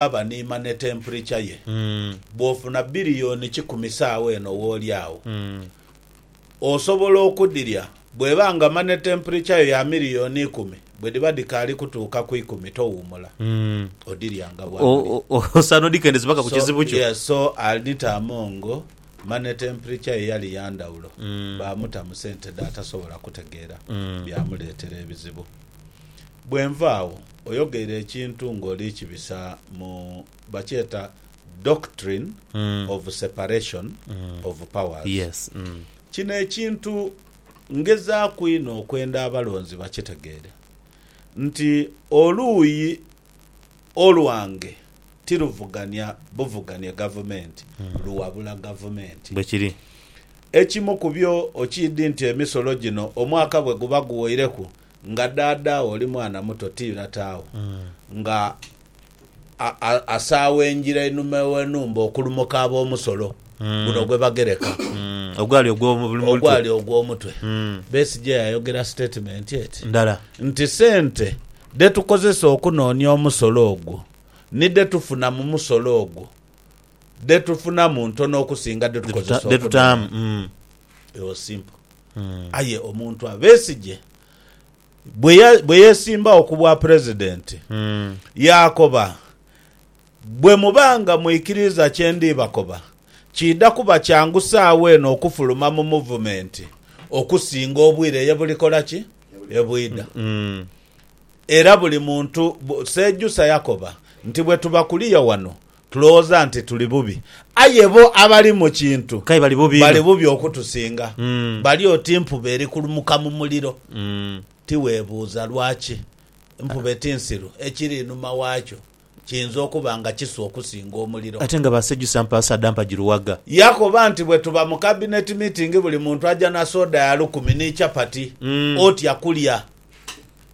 aba ni mane tempurica ye. Bw'ofuna biliyoni kikumi saagho eno w'oli agho, osobola okudhirya. Bw'eba nga mane tempurica yo ya miliyoni ikumi, bwe dhiba dhikaali kutuuka ku ikumi towuumula, odhirya nga bwaguli. Osaana odhikendeze paka ku kizibu kyo. Yes, so Alnita Amongo mane tempurica ye yali ya ndhawulo, baamuta mu sente dh'atasobola kutegeera, byamuleetera ebizibu. Bwenva agho oyogeire ekintu nga oli kibisa mu bakyeta doctrine of separation of powers. Kino ekintu ngezaaku inho okwenda abalonzi bakitegeere nti oluuyi olwange tiruvugania buvuganie gavumenti, luwabula gavumenti. Ekimu kubyo okiidi nti emisolo gino omwaka bweguba guwoireku Nga daadawo oli mwana muto ti latawo nga asaawa engira einuma ew'enhumba okulumuka ab'omusolo guno gwe bagereka ogwali ogw'omutwe ogw'omutwe, Besigye yayogera sitatimenti eti ndala nti sente dhe tukozesa okunoonia omusolo ogwo ni dhe tufuna mu musolo ogwo dhe tufunamu ntono okusinga dhe tukozesa okunoonia. It was simple. Aye omuntu a Besigye bwe yeesimbagho ku Bwapulezidenti yaakoba, Bwe muba nga mwikiriiza kye ndi bakoba, kiidha kuba kyangu saagho eno okufuluma mu Muvumenti okusinga obwire ye bulikola ki? Ye bwidha. Era buli muntu, Sejusa yakoba nti bwe tuba kuliya wano Tulowooza nti tuli bubi, aye bo abali mu kintu K'aye bali bubi inho. bali bubi okutusinga. Mm. Bali oti mpube eri kulumuka mu muliro. Mm. Ti weebuuza lwaki? Mpube ti nsiru, ekiri inhuma waakyo kiyinza okuba nga kisu okusinga omuliro. Ate nga baasejusa mpaasa dha mpagi luwaga. Yakoba nti, Bwe tuba mu kabineti miitingi buli muntu aja na soda ya lukumi ni chapati. Mm. Otya kulya?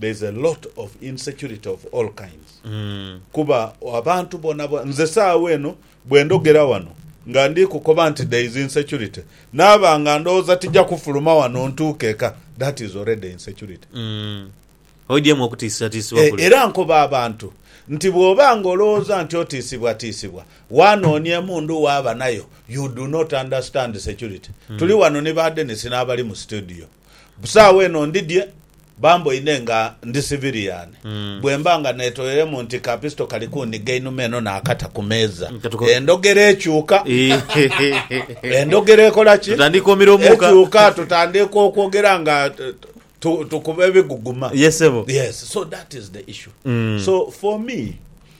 there's a lot of insecurity of all kinds kuba abantu bona bona nze saawa eno bwendogera wano nga ndi kukoba nti there is insecurity naaba nga ndowooza tija kufuluma wano ntuuke eka that is already insecurity Oidhyemu okutiisibwatiisibwa Eh, kule. era nkoba abantu nti bwoba nga olowooza nti otiisibwatiisibwa wanoonia emundu waaba nayo you do not understand security tuli wano ni ba Dennis n'abali mu studio Busaagho eno ndidhye bamboine nga ndi siviliyani. Bwe mba nga neetoyeremu nti ka pisito kali kunhiga einhuma eno naakata ku meeza, endhogera ekyuka. Endhogera ekola ki? Ekyuka, tutandiika okwogera nga tukuba ebiguguma. Yes, so that is the issue. So for me,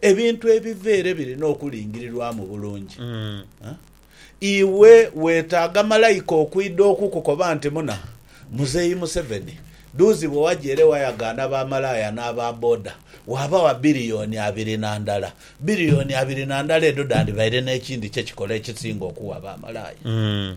Ebintu ebiva ere birina okulingirirwamu bulungi. Iwe weetaaga malaika okwidha okukukoba nti muna Muzeeyi Museveni duuzi bwe waja ere wayagaana ba malaaya n'aba boda waabawa biliyoni abiri na ndala. Biliyoni abiri na ndala edho dhandibaire n'ekindi kye kikola ekisinga okuwa ba malaaya.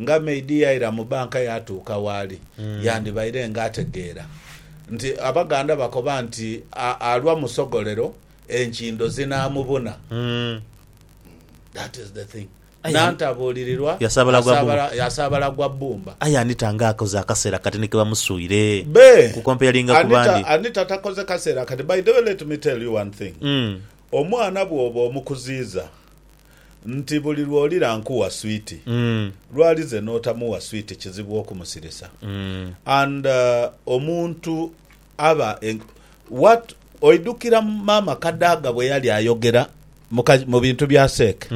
Nga maid yaira mu banka yaatuuka w'ali, yandibaire nga ategeera nti Abaganda bakoba nti alwa musogolero enkindo zinaamubuna. That is the thing. Nantabuulirirwa yasaabala gwa bbumba. Aye Anita nga akoze akaseera kati ni ke bamusuire. Be! Ku comparinga ku bandi. Anita takoze kaseera kati. By the way let me tell you one thing. Omwana bw'oba omukuziiza. nti buli lwolira nkuwa sweet lwali ze notamuwa sweet kizibu okumusirisa and omuntu aba what oidukira maama kadaga bweyali ayogera mubintu bya seeke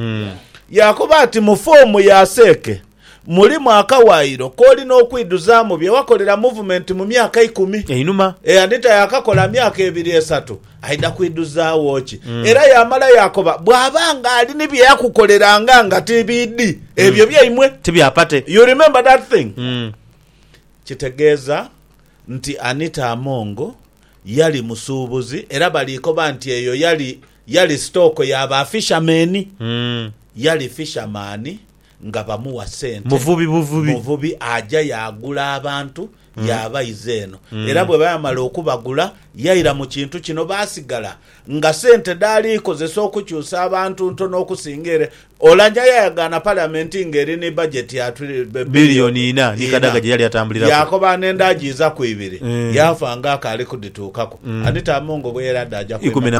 yakoba ati mu form ya seeke Mulimu akawaayiro k'olina okwidhuzaamu bye wakolera Muvumenti mu myaka eikumi? Einhuma. E Anita yaakakola myaka ebiri esatu. Aidha kwidhuzaagho ki? Era yaamala yaakoba bw'aba nga ali ni bye yakukoleranga nga ti biidhi, ebyo byaimwe. Ti bya pate. You remember that thing? Kitegeeza nti Anita Among yali musuubuzi era bali koba nti eyo yali yali sitooko ya ba fishermen. Yali fisherman. nga bamuwa sente. Muvubi aja yaagula abantu yaabaiza eno. Era bweba yamala okubagula yaira mu kintu kino baasigala nga sente dhaali kozesa okukyusa abantu ntono okusinga ere. Oulanyah yayagaana Paliamenti nga eri ni bajeti ya bilioni inha yaakoba n'endhaajiizaku ibiri yaafa nga akaali kudhituukaku. Anita Among bweyali adhaaja kwenda.